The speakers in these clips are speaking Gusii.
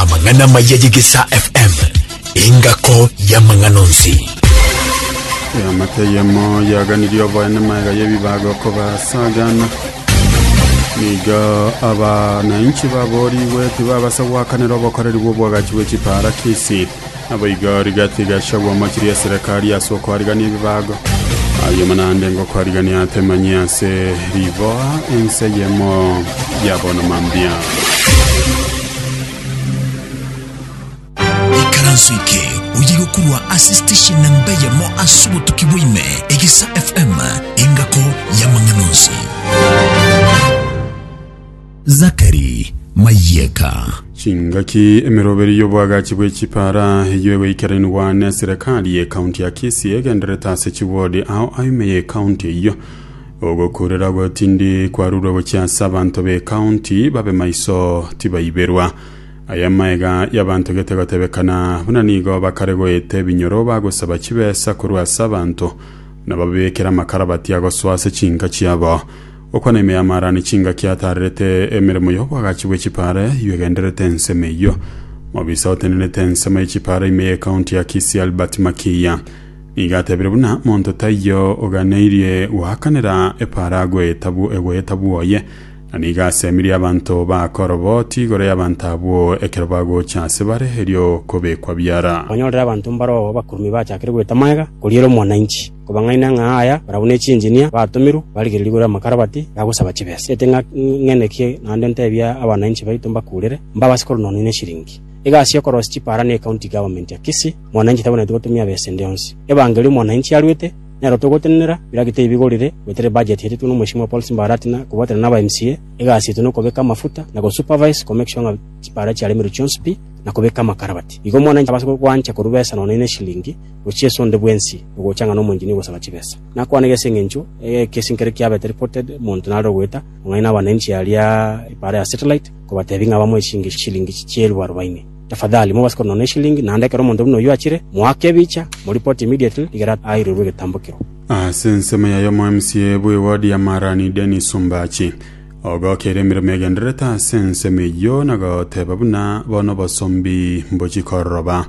amang'ana maya yegesa fm engako y'amang'ana onsi Eamate yemo yaganirie oboene maega y'ebibaga okobasagana nigo abananchi baborigwe tibabasa gwakanera obokoreri bw'obwagachi bw'echiparakisi Naboigo rigati igachagwa amachiri ya Serekari ase okoarigania ebibago, ayio naende ngokoarigania atemanyie ase riboa ense eyemo ya bono mambia. Ikaranso eke oye gokorwa ase station namba eyemo ase obotuki bwa ime, Egesa FM, engako y'amang'ana onsi. Zakari, Mayeka. Chingaki emeroberi y'oboagachi bwe chipara eyio egoikerenigwa ne serekari ye county ya Kisii egenderete ase chiwodi ao aime ye county eyio. Ogokurera gotindi kwarurwe gochia ase abanto be county babe maiso tibaiberwa. Aya maega y'abanto gete gotebekana buna nigo bakare goeta ebinyoro bagosaba chibesa korwa ase abanto na bababekere amakarabati agosoa ase chinka chiabo. Okwo neime y'amaarani chingaki ataarerete emeremo y'oboagachi bwe chipaare eyio egendererete ensemo eyio. Mobisa otenenete ensemo ye chipaare ime ye county ya Kisii Albert Makiiya nigo atebire buna monto taiyo oganeirie goakanera epaare agwe etabu egwe etabu oye na nigo asemirie abanto bakoroboti igoro y'abanto abwo ekero bagocha ase bare erio kobekwa biara. Kwanyorire abanto mbaroo abakurumi bachakire goeta magega koriera omwananchi. Kobang'aina ng'a aya barabwo ne chinjinia batomirwe barigererie igoro y'amakarabati ya gosaba chibesa. Tiaete ng'a ng'eneke naende ntebie abananchi baito mbakurere, mbabase koronanwa neshiringi. Egasi y'okorosia chipaara ne County Government ya Kisii, mwananchi tabwenereti gotumia besa ende yonsi. Ebangeri omwananchi aruete, nero togotenenera, biraki tibigorire, goetera ebudget yatetwe n'omweshimiwa Paul Simba Arati na kobwatana naba MCA, egasi yaito nokobeka amafuta na go supervise ko make sure ng'a chipaara chiaremerwe chionsi pi na kobeka amakarabati. Igo omwananchi abase gwancha korwa besa nonya neshiringi. gochia ase onde bwensi ogocha ng'a nomoincheni ogosaba chibesa. Nakwanegete ase engencho eye ekesi nkere kiabete reported, monto nare ogoeta ang'aini na abananchi aria epaara ya Satellite, kobatebia ng'a bamoe chingi shilingi chieelfu arobaini. Tafadhali, mobase konona eshilingi, naende ekero omonto buna oyio achire, moake ebicha, mo report immediately igere airerwe egetambo kiro. Ase ensemo yaye omo-MCA bw'eward ya Marani Dennis Ombachi ogokeire emeremo egendererete ase ensemo eyio na goteba buna bono obosombi mbochia kororoba.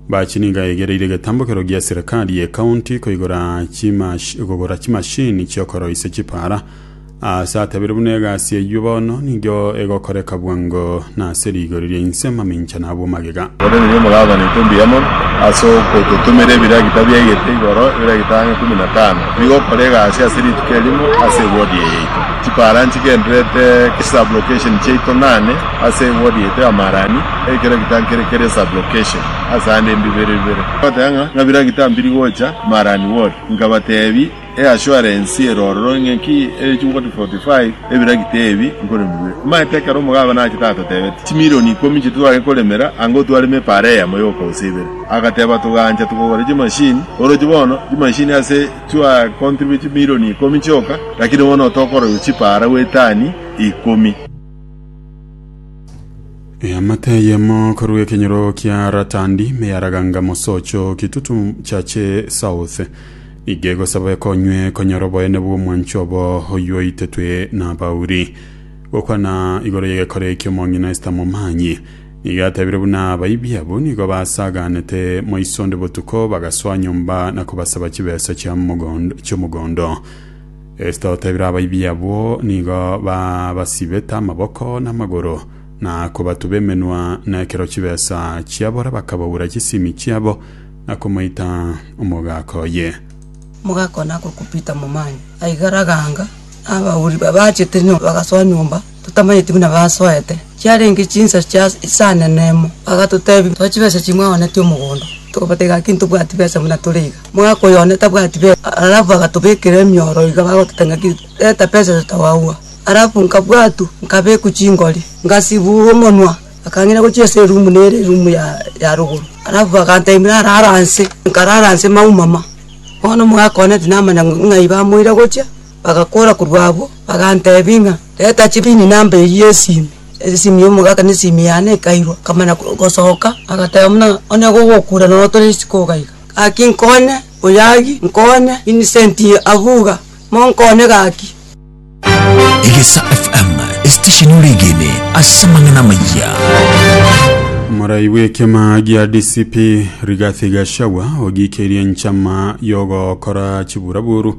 Bachie nigo aegereire egetambokero gia serikali ye county koigora chimash kogora chimashini chi'okoroisia chipaara. Aase atabire buna egasi eyio bono nigo egokoreka bwango na ase rigori ria inse mamincha na abwo magega. Korende inwe mogakwana intwe mbuya mono ase ogototomera ebiragita biaigete igoro, ebiragita ang'e ikomi na tano, bigokora egasi ase rituko erimo ase ewodi eye yaito. Chipaara nchigendererete chisublocation chiaito nane ase ewodi yaito ya Marani. Ekero gitankire keria sublocation ase aande mbibere bibere, nkagoteba ng'a nkabira gitambiri gocha Marani Ward, nkabatebi e assurance ere ororo ng'a ki ere chi 4045 ebira gita ebi nkorema bibere. Omanyete ekero omogabe nachete atotebeti chimilioni ikomi nchitwe tware koremera anga otwaremo epaara eyemo yoka gose ibere, agateba togancha togogora chimashini oroche bono chimashini ase twa contribute chimilioni ikomi chioka lakini bono otokoroywa chipaara gwetani ikomi. Eamate eyemo korwa ekenyoro kia Ratandi meyaraganga mosocho kitutu chache south iga egosaba ekonywe konyora oboyene bw'omwancho obo oywo oitetwe nabauri. Gokwana igoro y'egekoro ekio omong'ina Esta momanyi nigo atebire buna abaibi abwo nigo basaganete moiso onde botuko bagasoa nyomba na kobasaba chibesa chia mogondo- chiomogondo. Esita otebire abaibi abwo nigo babasibete amaboko na amagoro, na kobatuba emenwa nekero chibesa chiabora bakabaura chisimi chiabo, na komoita omogaka oye. Mogaka one agokupita momanya, aigara ganga, na abauri babachete nyomba bagasoa nyomba. totamanyeti buna basoete, chiarenge chinsa chia isani enemo. Bagatotebia, Tore chibesa chimwaonetie omogondo. Tokabatebia, Gaki ntobwati besa buna tore iga. Mwaka oyo one tabwati besa. Alafu agatobekera emioro iga bagototebia ng'aki, Reta besa erio totawaua. Alafu nkabwatwa, nkabekwa chingori, ngasibugwa omonwa, bakang'ina gochia ase erumu nere erumu ya ya rogoro. Alafu bagantebia narare anse, nkarara anse maumama. Bono omwaka one tinamanya ng'a ng'ai bamoire gochia. Bagakwora korwa abwo, baganteebia ng'a, Reta chibini namba eyio esimi. Esimi y'omogaka na esimi yane ekairwa, nkamanya gosoka, agateba buna onye gogokura nonya tore isiko iga iga. Gaki nkonye, oyagi, nkonye, Vincent Abuga, monkonye gaki. Egesa FM, esitesheni oregene ase amang'ana amayia. Morai bw'ekema gia DCP Rigathi Gachagua ogikirie enchama y'ogokora chiburaburu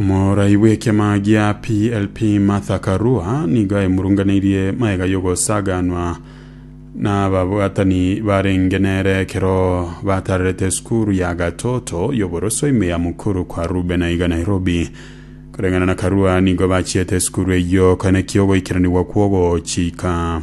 Omorai bw'ekiama gia PLP Martha Karua nigo aimurunganeirie maega y'ogosaganwa n'ababwatani barenge nere ekero batarerete esukuru ya Gatoto y'oboroso ime ya mukuru kwa Rube na iga Nairobi. Koreng'ana na Karua nigo bachiete esukuru eyio kane ki'ogoikeranigwa kw'ogochika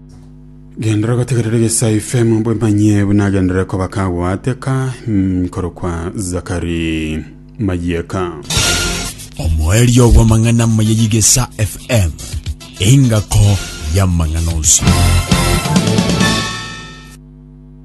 Genderera gotegerera egesae ifemo bwemanyie buna agenderere koba kagwateka mm, korokwa Zakari Mayeka. omoerio bw'amang'ana maya y'igesa fm engako y'amang'ana onsi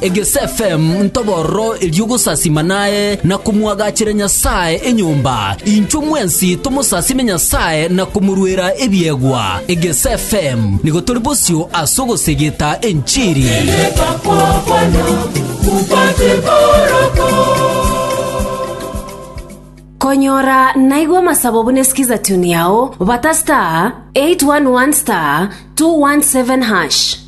Egesfm ntobororo erio gosasima naye na komwagachera Nyasae enyomba, inchwe mwensi tomosasime Nyasae na komoruera ebiegwa. Egesfm nigo tori bosio ase ogosegeta enchiri. Konyora naigwa amasabo buna esikiza tune yao bata star 811 star 217 hash.